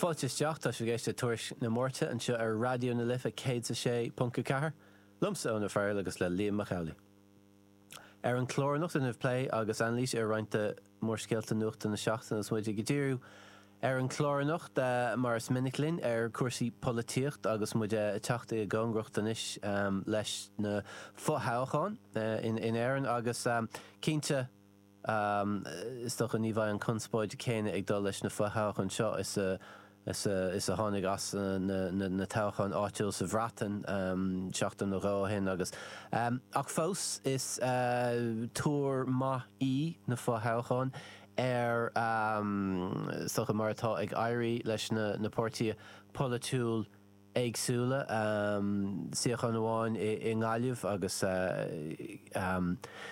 Fáilte isteach, tá sibh ag éisteacht Tuairisc na Máirte anseo ar Raidió na Life 106.4, liomsa Eoin O'Farrell agus le Liam Mac Amhlaigh. Ar an chlár anocht déanfaimid plé agus anailís ar roinnt de mhórscéalta nuachta na seachtaine agus muid ag díriú ar an chlár anocht mar is minic linn ar chúrsaí polaitíocht agus muid ag teacht i gcóngaracht anois leis na fothoghcháin in Éirinn agus cinnte Is dócha ní bheidh an conspóid chéanna ag dul leis na fo-thoghcháin seo is a tháinig as na toghcháin áitiúil sa Bhreatain seachtain nó dhó ó shin agus ach fós is tuar maith í na fo-thoghcháin ar is dócha mar atá ag éirí leis na páirtithe polaitiúil éagsúla, suíochán amháin i nGaillimh agus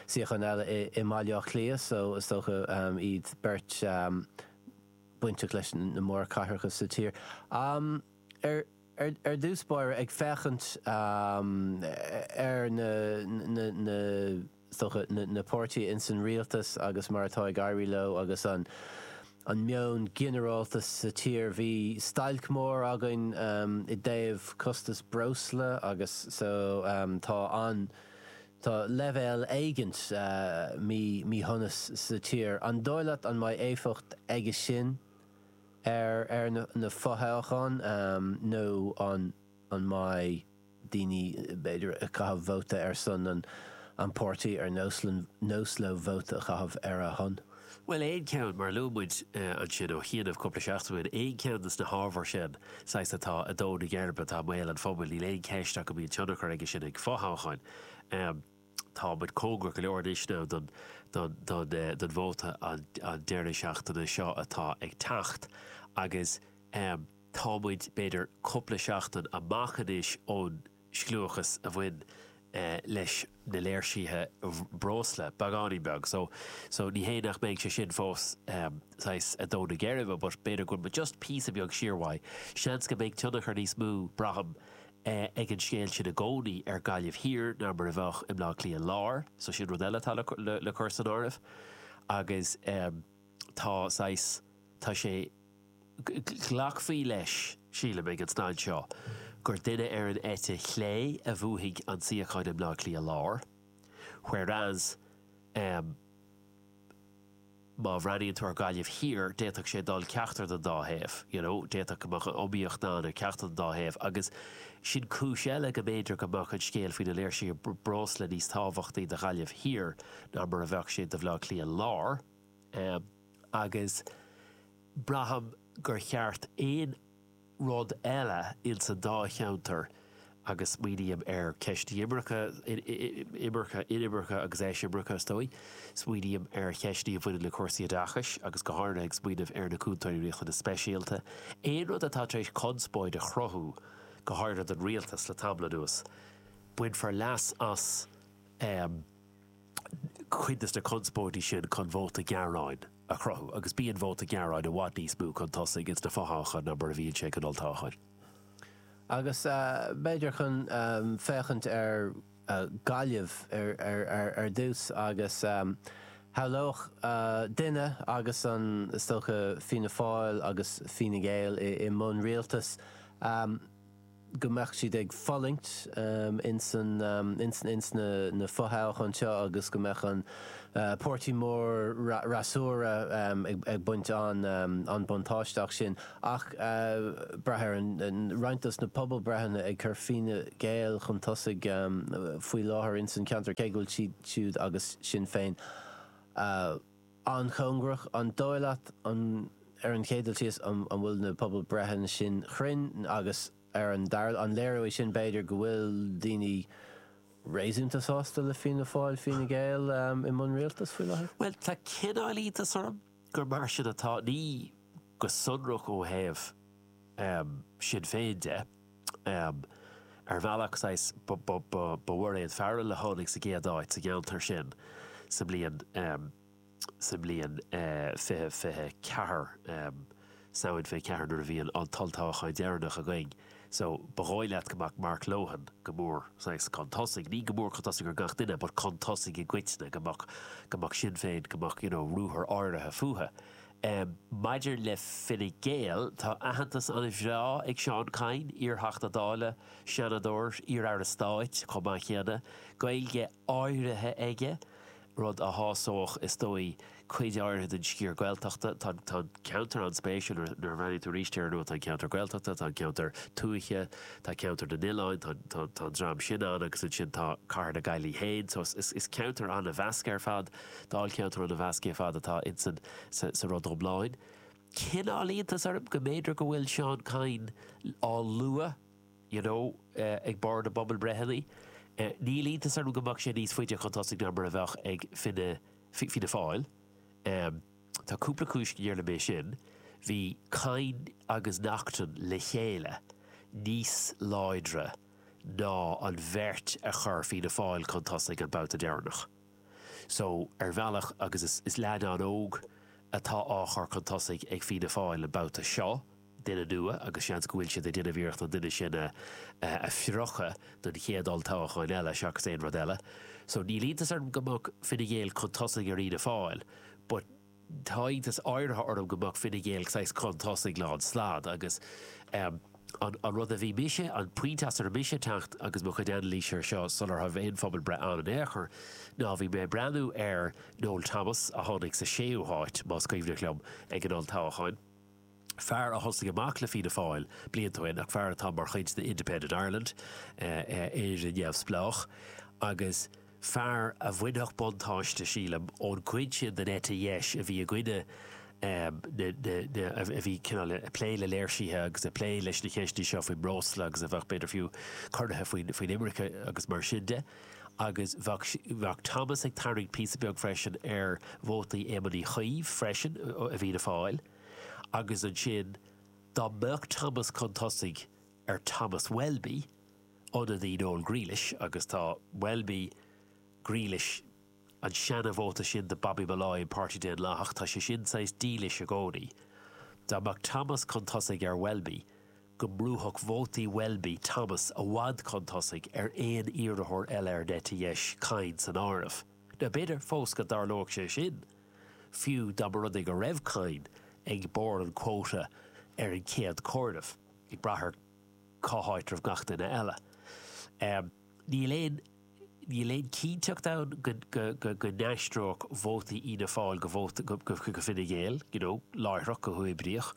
suíochán eile i mBaile Átha Cliath so is dócha iad beirt bainteach leis na mór cathracha sa tír. Ar dtús báire, ag féachaint ar na. dócha, na páirtithe ins an Rialtas agus mar atá ag éirí leo agus an meon ginearálta sa tír. Bhí stailc mór againn i dtaobh costas breosla agus so tá an, tá leibhéal éigint míshonais sa tír. An dóigh leat an mbeidh éifeacht aige sin ar na fothoghcháin nó an mbeidh? daoine b'fhéidir ag caitheamh vóta ar son an páirtí ar nós leo vóta a chaitheamh ar a shon. Bhuel, aon cheann, mar a luaigh muid ansin ó chianaibh cúpla seachtain ó shin, aon cheann de na hábhair sin, saghas, atá ag dó na geirbe, atá i mbéal an phobail, níl aon cheist ach go mbíonn tionchar aige sin ag fothoghcháin. Tá muid cóngarach go leor anois now don vóta an deireadh seachtaine seo atá ag teacht agus, tá muid b'fhéidir cúpla seachtain amach anois ón scliúchas a bhain leis na léirsithe breosla, beagáinín beag, so, so ní hé nach mbeidh sé sin fós saghas ag dó na geirbe but b'fhéidir go bhfuil muid just píosa beag siar uaidh, seans go mbeidh tionchar níos mó, braithim, ag an scéal sin i gcónaí ar Ghaillimh Thiar ná mar a bheadh i mBleá Cliath Láir, so sin rud eile atá le cur san áireamh agus tá saghas, tá sé. glacfaí leis, sílim, ag an staid seo gur duine ar an eite chlé a bhuafaidh an suíochán i mBleá Cliath Láir whereas má bhreathnaíonn tú ar Ghaillimh Thiar d'fhéadfadh sé dul ceachtar den dá thaobh, you know d'fhéadfadh go mbeadh an-iomaíocht ann ar ceachtar den dá thaobh agus sin cúis eile go mb'fhéidir go mbeadh an scéal faoi na léirsithe breosla níos tábhachtaí do Ghaillimh Thiar ná mar a bheadh sé do Bhleá Cliath Láir. agus braithim gur cheart aon rud eile, ins an dá cheantar agus smaoiním ar cheisteanna imirce, imirce, inimirce agus eisimirce is dóigh, smaoiním ar cheisteanna a bhaineann le cúrsaí oideachais agus go háirithe ag smaoineamh ar na Cúntóirí Riachtanas Speisialta, aon rud atá tar éis conspóid a chruthú go háirithe don Rialtas le tamall anuas, bainfear leas as. cuid de na conspóidí sin chun vóta gearáin a chruthú agus bíonn vóta gearáin i bhfad níos mó chun tosaigh sna fothoghcháin ná mar a bhíonn sé san olltoghchán. Agus b'fhéidir chun féachaint ar Ghaillimh ar dtús agus shamhlódh duine agus an, is dócha, Fianna Fáil agus Fine Gael i mbun rialtais, go mbeadh siad ag fulaingt ins na fo-thoghcháin seo agus go mbeadh an páirtí mór freasúra ag baint an-buntáiste as sin. Ach braitheann roinnt dos na pobalbhreitheanna ag cur Fine Gael chun tosaigh faoi láthair ins an ceantar, cé go bhfuil siad siúd agus Sinn Féin, an-chóngarach, an dóigh leat, an, ar an chéad dul síos, an bhfuil na pobalbhreitheanna sin cruinn agus ar an dara, an léireoidh sin b'fhéidir go bhfuil daoine réasúnta sásta le Fianna Fáil, Fine Gael i mbun rialtais faoi láthair? Bhuel, tá cineál iontas orm gur mar sin atá, ní go sonrach ó thaobh Sinn Féin de. ar bhealach, saghas, ba Mhairéad Farrell a tháinig sa gcéad áit sa gceantar sin sa mbliain sa mbliain 20, 24 Samhain 24 nuair a bhí an an t-olltoghchán deireanach againn. So, ba dhóigh leat go mbeadh Mark Lohan go mór, saghas, chun tosaigh, ní go mór chun tosaigh ar gach duine but chun tosaigh i gcoitinne, go mbeadh go mbeadh Sinn Féin, go mbeadh, you know, ruathar áirithe fúthu. Maidir le Fine Gael, tá aitheantas an-mhaith ag Seán Kyne, iarTheachta Dála, Seanadóir, iarAire Stáit chomh maith céanna, Gaeilge áirithe aige, rud a shásódh, is dóigh, cuid áirithe den sciar Gaeltachta. Tá an ceantar an-spéisiúil nuair a bhreathnaíonn tú arís air, nó tá an ceantar Gaeltachta, tá an ceantar tuaithe, tá ceantar na n-oileán, tá an dream sin ann agus ansin tá cathair na Gaillimhe féin. So is ceantar an-mheasctha ar fad. Dáilcheantar an-mheasctha ar fad atá insan sa rud iomlán. Cineál iontas orm go mb'fhéidir go bhfuil Seán Kyne á lua you know ag barr na bpobalbreitheanna. Níl iontas orm go mbeadh sé níos faide chun tosaigh ná mar a bheadh ag Fine Fianna Fáil. Tá cúpla cúis go ndéarfainn é sin. Bhí Kyne agus Naughten le chéile níos láidre ná an bheirt a chuir Fianna Fáil chun tosaigh an babhta deireanach. So, ar bhealach, agus is leaid an-óg atá á chur chun tosaigh ag Fianna Fáil an babhta seo, duine nua, agus seans go bhfuil siad ag déanamh iarracht an duine sin a a phriocadh don chéad olltoghchán eile seachas aon rud eile. So níl iontas orm go mbeadh Fine Gael chun tosaigh ar Fhianna Fáil but, Tá iontas áirithe orm go mbeadh Fine Gael saghas chun tosaigh lán stad agus an rud a bhí mise, an pointe as a raibh mise ag teacht agus mo chuid anailís air seo sular tharla aon phobalbhreith ann in aon chor ná bhí mé ag breathnú ar Noel Thomas a tháinig sa séú háit, más cuimhneach liom é, ag an olltoghchán. fear a thosaigh amach le Fianna Fáil blianta ó shin ach fear atá mar chuid de Independent Ireland, Éire Neamhspleách, agus fear a bhainfeadh buntáiste, sílim, ón gcuid sin den eite dheis a bhí i gcoinne na, a bhí cineál ag plé le léirsithe agus ag plé leis na ceisteanna seo faoin mbreosla agus a bheadh, b'fhéidir fiú, corraithe faoin imirce agus mar sin de. Agus bheadh Thomas ag tarraingt píosa beag freisin ar vótaí Éamoin Uí Chuív freisin i bhFianna Fáil. agus ansin dá mbeadh Thomas chun tosaigh ar Thomas Welby, ionadaí Noel Grealish, agus tá Welby, Grealish, an seana-vóta sin de Bobby Molloy, an Páirtí Daonlathach, tá sé sin saghas dílis i gcónaí, dá mbeadh Thomas chun tosaigh ar Welby, go mbrúfadh vótaí Welby Thomas i bhfad chun tosaigh ar aon iarrthóir eile ar an eite dheis, Kyne san áireamh. Now, b'fhéidir fós go dtarlóidh sé sin. fiú dá mba rud é go raibh Kyne ag barr an quota ar an gcéad comhaireamh, ag brath ar cá háit a raibh gach duine eile. Níl aon níl aon cinnteacht ann go n-aistreodh vótaí Fhianna Fáil go Fine Gael, you know, láithreach, go huathoibríoch.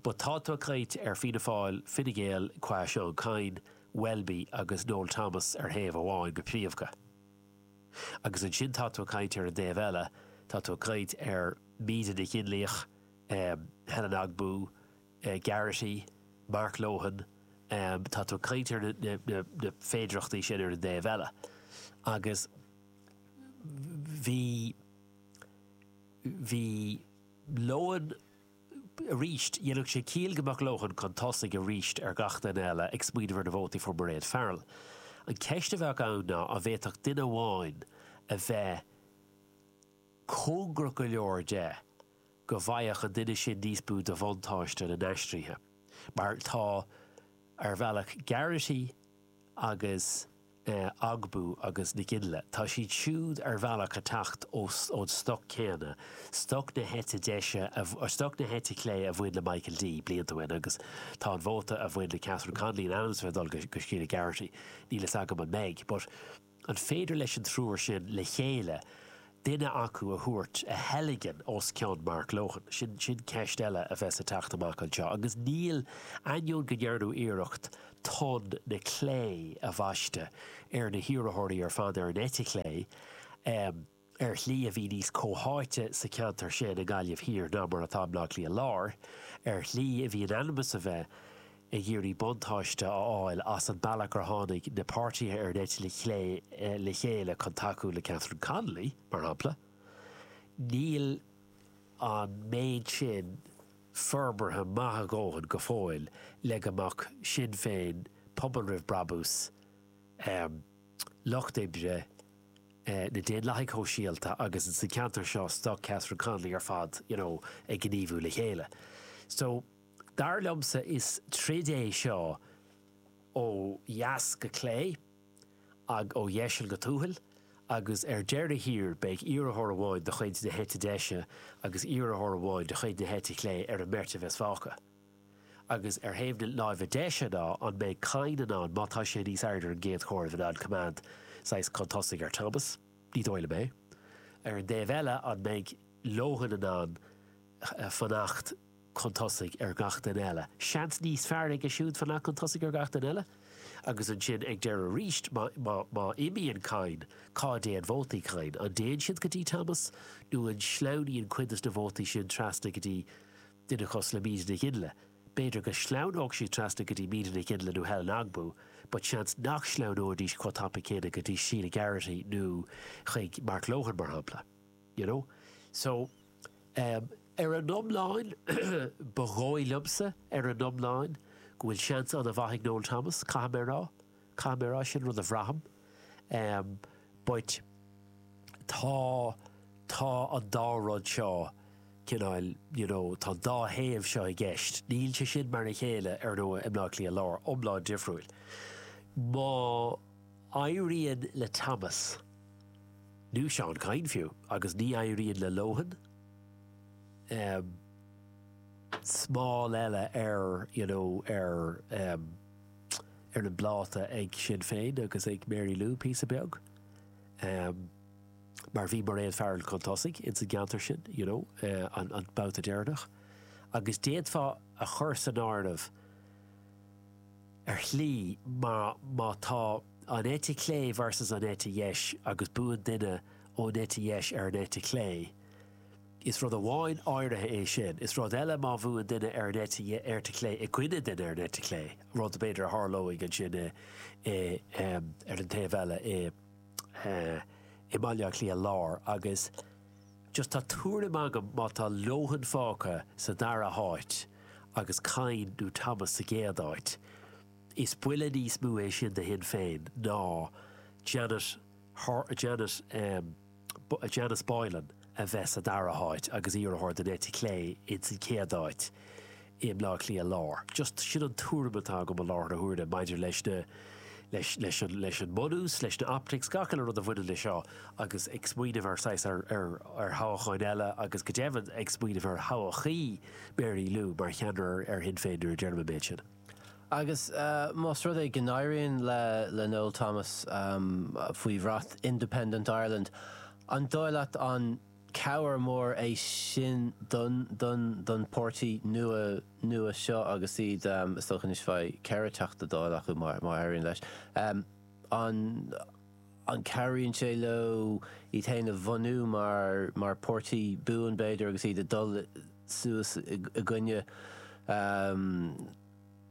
But tá tú ag caint ar Fianna Fáil, Fine Gael qua Seán Kyne, Welby agus Noel Thomas ar thaobh amháin go príomha. agus ansin tá tú ag caint ar an dtaobh eile, tá tú ag caint ar Míde Nic Fhionnlaoich, Helen Ogbu, Geraghty, Mark Lohan, tá tú ag caint ar na féidearthachtaí sin ar an dtaobh eile agus bhí, bhí Lohan, arís. Dhéanfadh sé ciall go mbeadh Lohan chun tosaigh arís ar gach duine eile ag smaoineamh ar na vótaí a fuair Mairéad Farrell. An cheist a bheadh ann ná an bhféadfadh duine amháin a bheith cóngarach go leor dó go bhfaigheadh an duine sin níos mó de bhuntáiste na n-aistrithe mar atá, ar bhealach, Garrity agus. Ogbu agus Nic Fhionnlaoich, tá siad siúd ar bhealach ag teacht ón stoc céanna, stoc na heite deise, stoc na heite clé a bhain le Michael D blianta ó shin agus tá an vóta a bhain le Catherine Connolly in ainm is a bheith ag dul go Sheila Garrity. Níl a fhios agam an mbeidh, but an féidir leis an triúr sin le chéile duine acu a thabhairt, a theilgean os cionn Mark Lohan. Sin sin ceist eile a bheas ag teacht amach anseo agus níl, ainneoin go ndearnadh iarracht tonn na clé a bhaisteadh ar na hiarrathóirí ar fad ar an eite chlé, ar shlí a bhí níos comhtháite sa cheantar sin i nGaillimh Thiar ná mar atá i mBleá Cliath Láir, ar shlí a bhí in ainm is a bheith. ag iarraidh buntáiste a fháil as an mbealach gur tháinig na páirtithe ar an eite chlé le chéile chun tacú le Catherine Connolly, mar shampla, níl an méid sin forbartha maith a dhóthain go fóill le go mbeadh Sinn Féin, Pobal Roimh Brabús, Lucht Oibre, na Daonlathaigh Shóisialta agus insa cheantar seo, stoc Catherine Connolly ar fad, you know, ag gníomhú le chéile. So. Dar liomsa is troid é seo ó dheas go clé agus ó dheiseal go tuathal agus ar deireadh thiar beidh iarrthóir amháin de chuid na heite deise agus iarrthóir amháin de chuid na heite clé ar an mbeirt a bheas fágtha. Agus ar thaobh na láimhe deise ná an mbeidh Kyne in ann, má tá sé níos airde ar an gcéad chomhaireamh, in ann coimeád saghas chun tosaigh ar Thomas? Ní dóigh liom é. Ar an dtaobh eile an mbeidh Lohan in ann fanacht, chun tosaigh ar gach duine eile, seans níos fearr aige siúd fanacht chun tosaigh ar gach duine eile agus ansin ag deireadh arís má imíonn Kyne cá dtéann vótaí Kyne? An dtéann siad go dtí Thomas nó an sleamhnaíonn cuid de na vótaí sin trasna go dtí duine cosúil le Míde Nic Fhionnlaoich? B'fhéidir go sleamhnódh siad trasna go dtí Míde Nic Fhionnlaoich nó Helen Ogbu but seans nach sleamhnóidís chomh tapa céanna go dtí Sheila Garrity nó chuig Mark Lohan mar shampla. you know. So, um ar an iomlán, ba dhóigh liomsa, ar an iomlán, go bhfuil seans an-mhaith ag Noel Thomas, caithfidh mé a rá. Caithfidh mé a rá, sin rud a bhraithim. Um but tá tá an dá rud seo cineál, you know, tá an dá thaobh seo i gceist. Níl sé sin mar a chéile, ar ndóigh, i mBleá Cliath Lár, iomlán difriúil. Má. éiríonn le Thomas, nó Seán Kyne fiú, agus ní éiríonn le Lohan, em, smál eile ar, you know, ar, em, ar an bpláta ag Sinn Féin agus ag Mary Lou píosa beag, em, mar bhí Mairéad Farrell chun tosaigh ins an gceantar sin, you know, eh, an, an babhta deireanach. Agus d'fhéadfá a chur san áireamh, ar shlí má má tá an eite chlé versus an eite dheis agus buann duine ón eite dheis ar an eite chlé, is rud amháin áirithe é sin, is rud eile má bhuann duine ar an eite chlé i gcoinne duine ar an eite chlé, rud b'fhéidir a tharlóidh ansin, ar an taobh eile, i mBaile Átha Cliath Láir agus. just tá tuairim agam má tá Lohan fágtha sa dara háit agus Kyne nó Thomas sa gcéad áit, is buille níos mó é sin do Shinn Féin ná Jan, Jan, Janice Boylan a bheith sa dara háit agus iarrthóir den eite chlé ins an chéad áit. i mBleá Cliath Lár. Just sin an tuairim atá agam i láthair na huaire maidir leis na, leis, leis an, leis an mbunús, leis na optics, le gach aon rud a bhaineann leis seo agus ag smaoineamh ar saghas, ar, ar, ar thoghcháin eile agus go deimhin ag smaoineamh ar thoghadh Mary Lou mar cheannaire ar, ar Shinn Féin nuair a deirim an méid sin. Agus más rud é go n-éiríonn le, le Noel Thomas, faoi bhrat Independent Ireland, an dóigh leat an Cabhair mhór é sin don, don pháirtí nua nua seo agus iad, is dócha, anois bheidh ceithre Teachta Dála acu má éiríonn leis, an cabhraíonn sé leo iad féin a bhunú mar páirtí buan, b'fhéidir, agus iad ag dul suas i gcoinne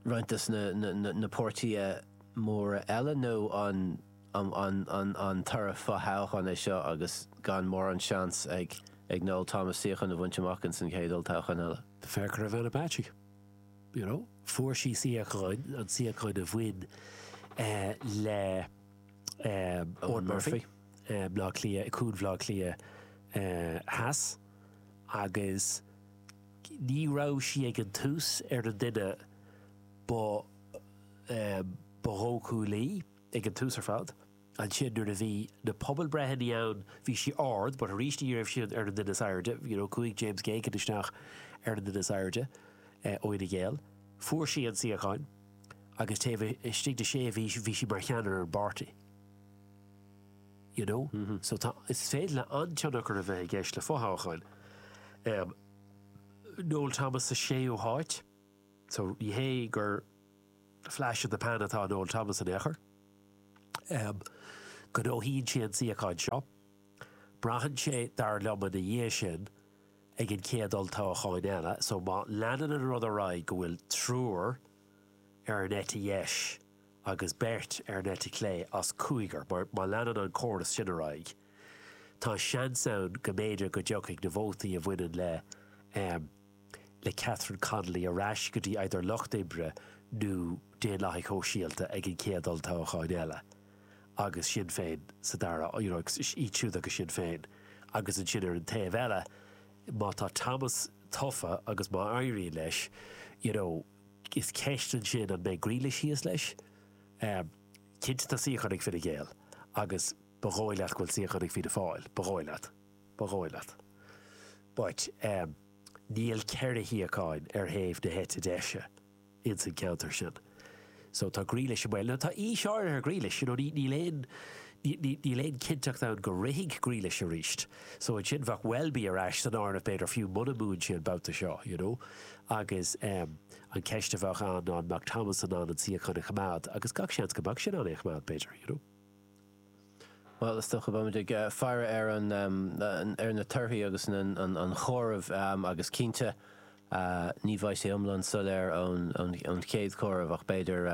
roinnt de na páirtithe móra eile nó an. an toradh fothoghcháin é seo agus gan mórán seans ag Noel Thomas suíochán a bhaint amach ins an chéad olltoghchán eile. Féach ar Ivana Bacik. You know, fuair sí suíochán, an suíochán a bhain le Eoin Murphy, Bhleá Cliath, Cuan Bhleá Cliath Theas agus ní raibh sí ag an tús ar an duine ba dhóchúla. ag an tús ar fad. Ansin nuair a bhí na pobalbreitheanna ann bhí sí ard but arís ní raibh sí ar an duine is airde you know chuaigh James Geoghegan isteach ar an duine is airde ó Fhine Gael. Fuair sí an suíochán agus taobh istigh de sé mhí bhí sí mar cheannaire ar an bpáirtí you know so is féidir le an-tionchar a bheith i gceist le fothoghcháin. Um, Noel Thomas sa séú háit so ní hé gur Flash in the pan atá in Noel Thomas in aon chor. Gnóthaíonn sé an suíochán seo. Braitheann sé, dar liom, ina dhiaidh sin, ag an chéad olltoghchán eile. So má leanann an rud ar aghaidh go bhfuil triúr ar an eite dheis agus beirt ar an eite chlé as cúigear, má leanann an córas sin ar aghaidh, tá seans ann go mb'fhéidir go dtiocfaidh na vótaí a bhaineann le, le Catherine Connolly ar ais go dtí either Lucht Oibre nó Daonlathaigh Shóisialta ag an chéad olltoghchán eile agus Sinn Féin sa dara you know iad siúd agus Sinn Féin agus ansin ar an taobh eile má tá Thomas tofa agus má éiríonn leis you know is ceist ansin an mbeidh Grealish thíos leis? Um, cinnte tá suíochán ag Fine Gael agus ba dhóigh leat go bhfuil suíochán ag Fianna Fáil, ba dhóigh leat. Ba dhóigh leat. But níl ceithre shuíochán ar thaobh na heite deise ins an ceantar sin. So tá Grealish i mbaol. Now tá aois áirithe ar Grealish, you know, níl aon, níl aon cinnteacht ann go rithfidh Grealish arís. So ansin bheadh Welby ar ais san áireamh b'fhéidir fiú muna mbuann sé an babhta seo, you know. Agus an ceist a bheadh ann ná an mbeadh Thomas in ann an suíochán a choimeád agus gach seans go mbeadh sé in ann é a choimeád b'fhéidir, you know. Bhuel, is dócha go mbeidh muid ag faire ar na, ar na torthaí agus an comhaireamh agus cinnte ní bheidh sé iomlán soiléir ón chéad chomhaireamh ach b'fhéidir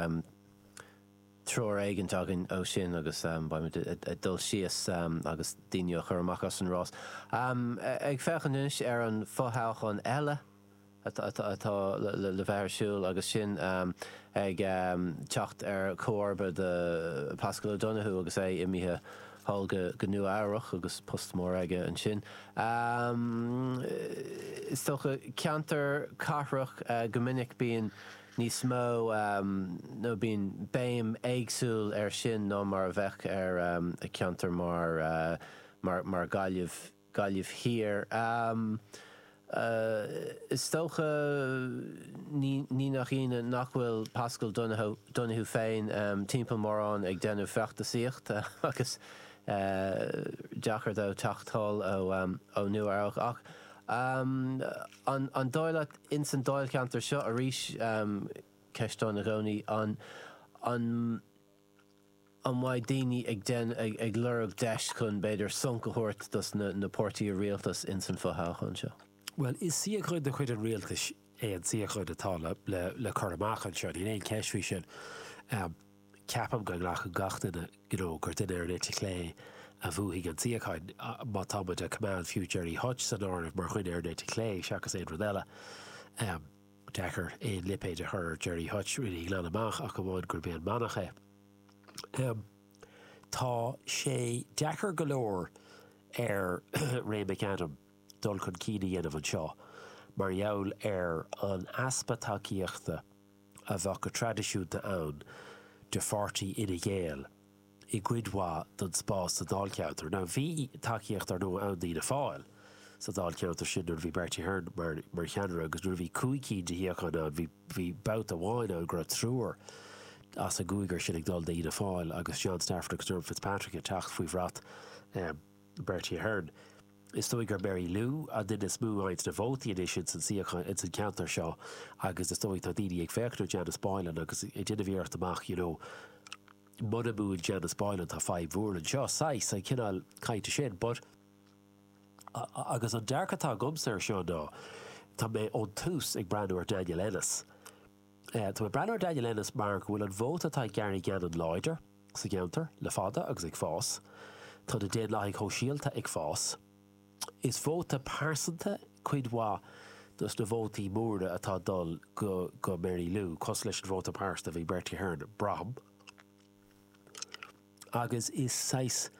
treoir éigint againn ó sin agus beidh muid ag dul síos agus daoine á gcur amach as an rás. Ag féachaint anois ar an fothoghchán eile, atá le bheith ar siúl agus sin ag teacht ar chomharba do Paschal Donohoe agus é imithe thall go Nua-Eabhrac agus post mór aige ansin, is dócha. Ceantar cathrach go minic bíonn níos mó nó bíonn béim éagsúil ar sin ná mar a bheadh ar cheantar mar, mar Ghaillimh. Gaillimh Thiar. Is dócha, ní nach ionadh, nach bhfuil Paschal Donohoe féin timpeall mórán ag déanamh feachtasaíochta agus deacair dó teacht anall ó Nua-Eabhrac. Ach an dóigh leat, ins an dáilcheantar seo arís, ceist ann i gcónaí, an. an mbeidh daoine ag déan, ag, ag lorg deis chun b'fhéidir sonc a thabhairt dos na, na páirtithe rialtais ins an fho-thoghchán seo? Bhuel, is suíochán de chuid an rialtais é an suíochán atá le, le, le cur amach anseo, níl aon cheist faoi sin. Ceapaim go nglacann gach duine, you know, gur duine ar an eite chlé a bhuafaidh an suíochán, má tá muid a' coimeád fiú Gerry Hutch san áireamh mar dhuine ar an eite chlé seachas aon rud eile. deacair aon lipéid a chur ar Gerry Hutch, déanta na fírinne glan amach ach amháin gurb é an manach é. Tá sé deacair go leor ar Ray McAdam dul chun cinn a dhéanamh anseo mar gheall ar an easpa tacaíochta a bheadh go traidisiúnta ann do pháirtí Fhine Gael i gcuid mhaith den spás sa dáilcheantar. Now bhí tacaíocht ar ndóigh ann d'Fhianna Fáil sa dáilcheantar sin nuair a bhí Bertie Ahern mar mar cheannaire agus nuair a bhí cúig cinn de shuíocháin ann bhí bhí babhta amháin ann go raibh triúr as an gcúigear sin ag dul d'Fhianna Fáil agus John Stafford agus Dermot Fitzpatrick ag teacht faoi bhrat um Bertie Ahern. Is dóigh gur Mary Lou an duine is mó a fhaigheanns na vótaí anois ins an suíochán ins an ceantar seo agus is dóigh tá daoine ag féachaint ar Janice Boylan agus ag déanamh iarracht amach you know Muna mbuann Janice Boylan, tá fadhb mhór anseo, saghas, an cineál cainte sin, but Agus an dearcadh atá agamsa ar seo ná, tá mé ón tús ag breathnú ar Daniel Ennis. Tá mé ag breathnú ar Daniel Ennis mar go bhfuil an vóta atá ag Gary Gannon láidir sa gceantar le fada agus ag fás. Tá na Daonlathaigh Shóisialta ag fás. Is vóta pearsanta cuid mhaith de na vótaí móra atá ag dul go Mary Lou, cosúil leis an vóta pearsanta a bhí ag Bertie Ahern, braithim, agus is saghas,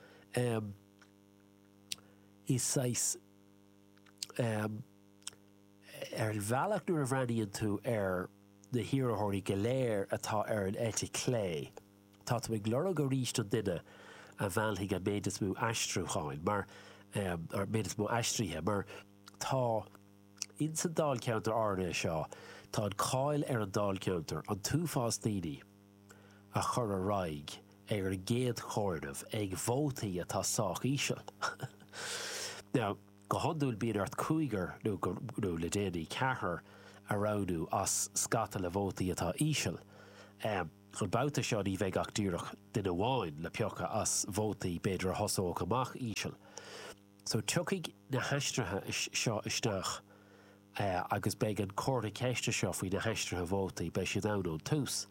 is saghas, ar bhealach nuair a bhreathnaíonn tú ar na hiarrthóirí go léir atá ar an eite chlé, Tá tú ag lorg arís an duine a mheallfaidh an méid is mó aistriúcháin, mar an méid is mó aistrithe, mar tá. Ins an dáilcheantar áirithe seo, tá an cáil ar an dáilcheantar, an t-uafás daoine a chur ar aghaidh ag an gcéad chomhaireamh le vótaí atá sách íseal. Now, go hiondúil bíonn ort cúigear, nó go, nó le déanaí, ceathrar a roghnú as scata le vótaí atá íseal. An babhta seo ní bheidh ach díreach duine amháin le piocadh as vótaí b'fhéidir a thosódh amach íseal. So tiocfaidh na haistrithe seo isteach agus beidh an comhartha ceiste seo faoi na haistrithe vótaí, beidh siad ann ón tús.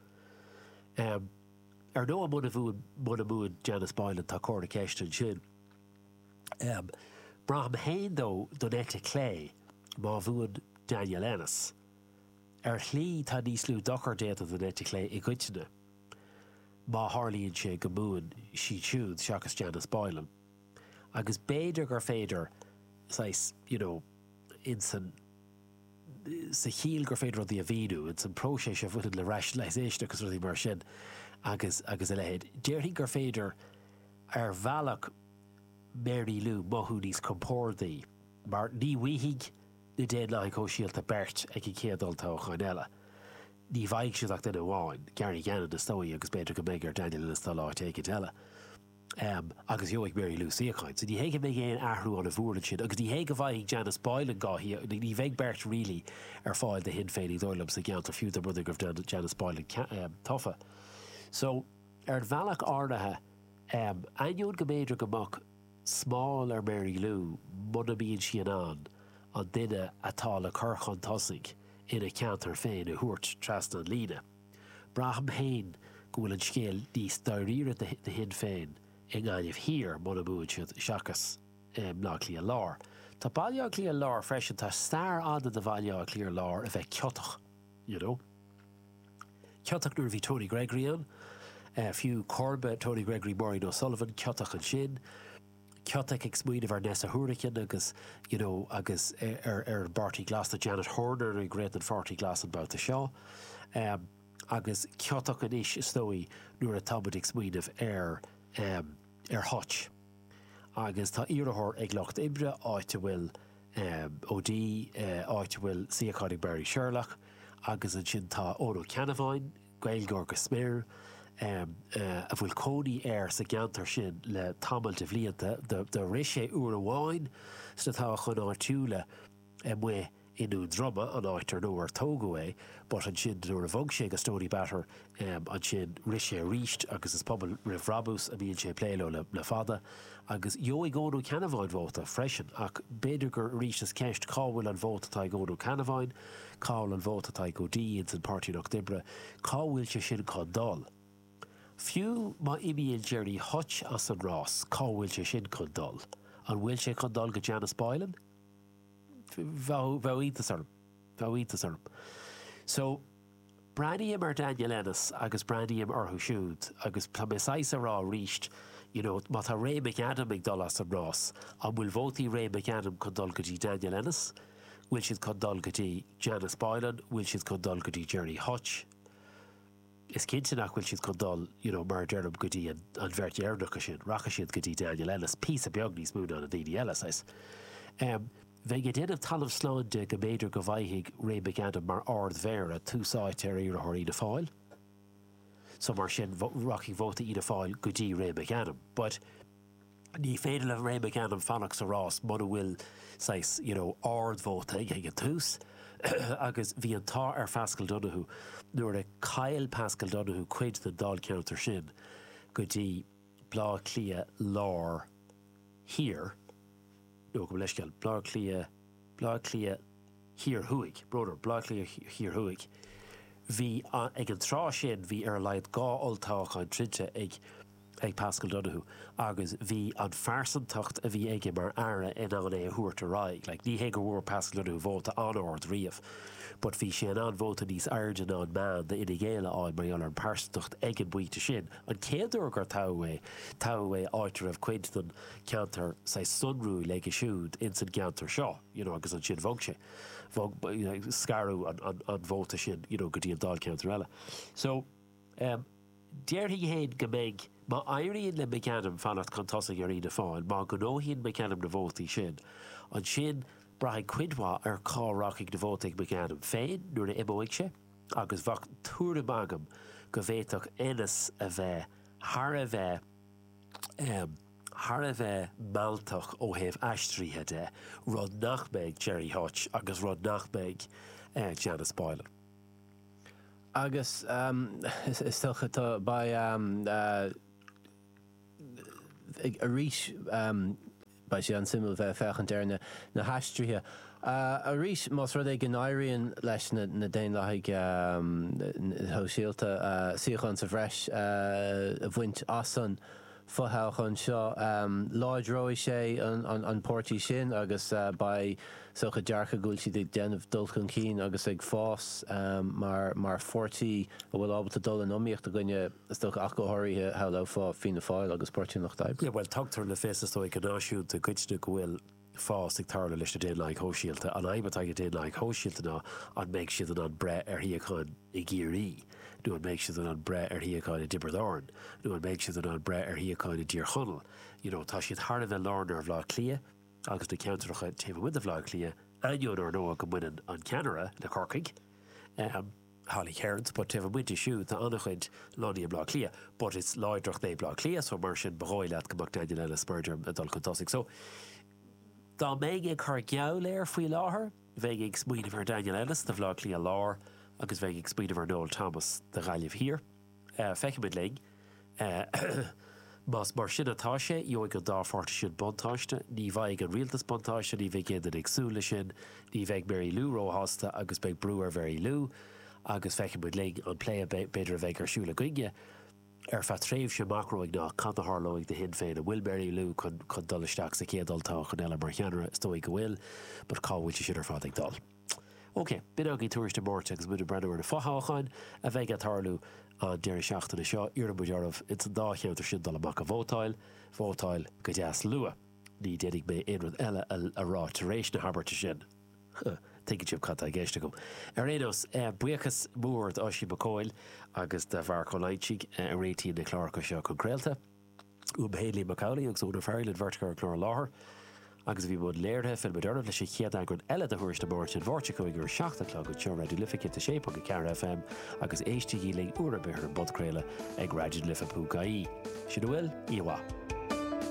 Ar ndóigh muna muna mbuann Janice Boylan tá comhartha ceiste ansin. Braithim fhéin dó don eite clé má bhuann Daniel Ennis. Ar shlí, tá níos lú dochair déanta don eite chlé i gcoitinne má tharlaíonn sé go mbuann sé siúd seachas Janice Boylan. Agus b'fhéidir gur féidir, saghas, you know, in san, sa chiall gur féidir rudaí a mhíniú, in san próiseas a bhaineann le rationalisation agus rudaí mar sin agus, agus a leithéid, déarfainn gur féidir ar bhealach Mary Lou mothú níos compórdaí mar ní bhuafaidh, na Daonlathaigh Shóisialta beirt ag an chéad olltoghchán eile. Ní bhfaighidh siad ach duine amháin, Gary Gannon is dóigh agus b'fhéidir go mbeidh ar Daniel Ennis dul áit éigin eile. Agus gheobhaidh Mary Lou suíochán. So ní hé go mbeidh aon athrú an-mhór ansin agus ní hé go bhfaighidh Janice Boylan dhá shuíochán, ní bheidh beirt really ar fáil do Shinn Féin is dóigh liom sa gceantar fiú dá mba rud é go raibh Janice Boylan tofa. So ar an bhealach áirithe ainneoin go mb'fhéidir go mbeadh. smál ar Mary Lou muna mbíonn sí in ann an duine atá le cur chun tosaigh ina ceantar féin a thabhairt trasna an líne. Braithim féin go bhfuil an scéal níos dáiríre do Shinn Féin i nGaillimh Thiar, muna mbuann siad, seachas i mBleá Cliath Lár. Tá Baile Átha Cliath Lár freisin, tá stair fhada de Bhaile Átha Cliath Lár a bheith ciotach. you know. Ciotach nuair a bhí Tony Gregory ann, eh, fiú comharba Tony Gregory Maureen O'Sullivan, ciotach ansin, ciotach ag smaoineamh ar Neasa Hourigan agus, you know, agus ar ar an bPáirtí Glas tá Janet Horner ag rith don Pháirtí Glas an babhta seo, em, agus ciotach anois is dóigh nuair atáimid ag smaoineamh ar, em, ar Hutch agus tá iarrthóir ag Lucht Oibre áit a bhfuil O'Dea, áit a bhfuil suíochán ag Marie Sherlock agus ansin tá Eoin Ó Ceannabháin, Gaeilgeoir go smior, a bhfuil cónaí air sa gceantar sin le tamall de bhlianta. Do rith sé uair amháin sna toghcháin áitiúla. amuigh i nDún Droma, an áit ar nó ar tógadh é, but ansin nuair a bhog sé go Stoneybatter, em, ansin rith sé arís agus is Pobal Roimh Bhrabús a mbíonn sé ag plé leo le, le fada agus gheobhaidh Eoin Ó Ceannabháin vóta freisin ach b'fhéidir gur, arís is ceist cá bhfuil an vóta atá ag Eoin Ó Ceannabháin, cá bhfuil an vóta atá ag O'Dea ins an Páirtí an Lucht Oibre, cá bhfuil sé sin chun dul? Fiú má imíonn Gerry Hutch as an rás, cá bhfuil sé sin chun dul? An bhfuil sé chun dul go Janice Boylan? bheadh, bheadh iontas orm, bheadh iontas orm. So, breathnaím ar Daniel Ennis agus breathnaím orthu siúd agus tá mé saghas a' rá arís, you know, má tá Ray McAdam ag dul as an rás, an bhfuil vótaí Ray McAdam chun dul go dtí Daniel Ennis, bhfuil siad chun dul go dtí Janice Boylan, bhfuil siad chun dul go dtí Gerry Hutch? Is cinnte nach bhfuil siad chun dul, you know, mar a deirim, go dtí an bheirt dheireanacha sin. Rachaidh siad go dtí Daniel Ennis píosa beag níos mó ná na daoine eile, saghas. Em, bheinn ag déanamh talamh slán de go mb'fhéidir go bhfaighfidh Ray McAdam mar Ard-Mhéara tús áite ar iarrthóir Fhianna Fáil, so mar sin, rachaidh vóta Fhianna Fáil go dtí Ray McAdam. But. Ní féidir le Ray McAdam fanacht sa rás muna bhfuil saghas, you know, ardvóta aige ag an tús agus bhí an t-ádh ar Phaschal Donohoe nuair a chaill Paschal Donohoe cuid den Dáilcheantar sin go dtí Baile Átha Cliath Lár Thiar. Gabh mo leithscéal, Bleá Cliath, Bleá Cliath Thiar Thuaidh, broader, Bleá Cliath Thiar Thuaidh Bhí, ag an tráth sin, bhí ar a laghad dhá olltoghchán troidte ag ag Paschal Donohoe agus bhí an phearsantacht a bhí aige mar Aire in ann é a thabhairt ar aghaidh. Like ní hé go bhfuair Paschal Donohoe vóta an-ard riamh but bhí sé in ann vóta níos airde ná an meán d'Fhine Gael a fháil mar gheall ar an bpearsantacht ag an bpointe sin. An chéad uair gur toghadh é, toghadh é áit a raibh cuid den ceantar saghas sonrúil aige siúd ins an gceantar seo you know agus ansin bhog sé, bhog, scaradh an, an, an vóta sin you know go dtí an dáilcheantar eile. So um, déarfainn féin go mbeidh Má éiríonn le McAdam fanacht chun tosaigh ar Fhianna Fáil, má ghnóthaíonn McAdam na vótaí sin, ansin braithfidh cuid mhaith ar cá rachaidh na vótaí ag McAdam féin nuair a imeoidh sé agus bheadh tuairim agam go bhféadfadh Ennis a bheith thar a bheith thar a bheith mealltach ó thaobh aistrithe de, rud nach mbeidh Gerry Hutch agus rud nach mbeidh Janice Boylan. Agus beidh arís. Beidh sé an-suimiúil bheith ag féachaint ar na haistrithe arís más rud é go n-éiríonn leis na Daonlathaigh Shóisialta suíochán sa bhreis a bhaint as an bhfothoghchán seo. Láidreoidh sé an páirtí sin agus beidh sórt dearcadh, go bhfuil siad ag déanamh dul chun cinn agus ag fás mar pháirtí a bhfuil ábalta dul in iomaíocht i gcoinne, is dócha, go háirithe shamhlófá Fianna Fáil agus Páirtí an Lucht Oibre. Bhuel, tugtar le fios, is dóigh, go náisiúnta i gcoitinne go bhfuil fás ag tarlú leis na Daonlathaigh Shóisialta. An fhadhb atá ag na Daonlathaigh Shóisialta ná an mbeidh siad in ann breith ar shuíocháin i gCiarraí nó an mbeidh siad in ann breith ar shuíocháin i dTiobraid Árann nó an mbeidh siad in ann breith ar shuíocháin i dTír Chonaill. You know, tá siad thar a bheith lárnaithe ar Bhleá Cliath. agus na ceantracha taobh amuigh de Bhleá Cliath, ainneoin, ar ndóigh, go mbaineann an ceannaire le Corcaigh, Holly Cairns, but taobh amuigh di siúd, tá an-chuid lonnaithe i mBleá Cliath, but is láidreacht dóibh Bleá Cliath, so mar sin, ba dhóigh leat go mbeadh Daniel Ellis, mar a deirim, ag dul chun tosaigh. So, dá mbeinn ag cur geall air faoi láthair, bheinn ag smaoineamh ar Daniel Ennis do Bhleá Cliath Lár agus bheinn ag smaoineamh ar Noel Thomas do Ghaillimh Thiar. Feicfimid linn. Más mar sin atá sé, gheobhaidh an dá pháirtí sin buntáiste. Ní bhfaighidh an rialtas buntáiste, ní bheidh aon duine ag súil leis sin. Ní bheidh Mary Lou róshásta agus beidh brú ar Mhary Lou. Agus feicfimid linn an plé a b'fhéidir a bheidh ar siúl againne ar feadh tréimhse amach romhainn ná cad a tharlóidh do Shinn Féin. An bhfuil Mary Lou chun dul isteach sa chéad olltoghchán eile mar cheannaire? Is dóigh go bhfuil, but cá bhfuil sé seo ar fad ag dul? OK, b'in againn Tuairisc na Máirt agus muid ag breathnú ar na fothoghcháin a bheidh ag tarlú an deireadh seachtaine seo. Iarrann muid oraibh ins an dá cheantar sin dul amach a vótáil. Vótáil go deas luath. Ní déanfaidh mé aon rud eile a rá tar éis na habairte sin. Tuigeann sibh cad tá i gceist agam. Ar aon nós, buíochas mór d'Oisín Mac Cóil agus do Mharc Ó Loingsigh a réitíonn na cláracha seo chun craolta. Uaim fhéin, Liam Mac Amhlaigh, agus Úna Farrell, an bheirt a chuir an clár i láthair agus a bhí i mbun léirithe, fillfidh muid oraibh leis an chéad eagran eile de Thuairisc na Máirt, an Mháirt seo chugainn ar a 7 a chlog, anseo ar Raidió na Life 106.4 FM agus éistígí linn uair ar bith ar an bpodchraoladh ag raidionalife.ie. Sin a bhfuil, oíche mhaith.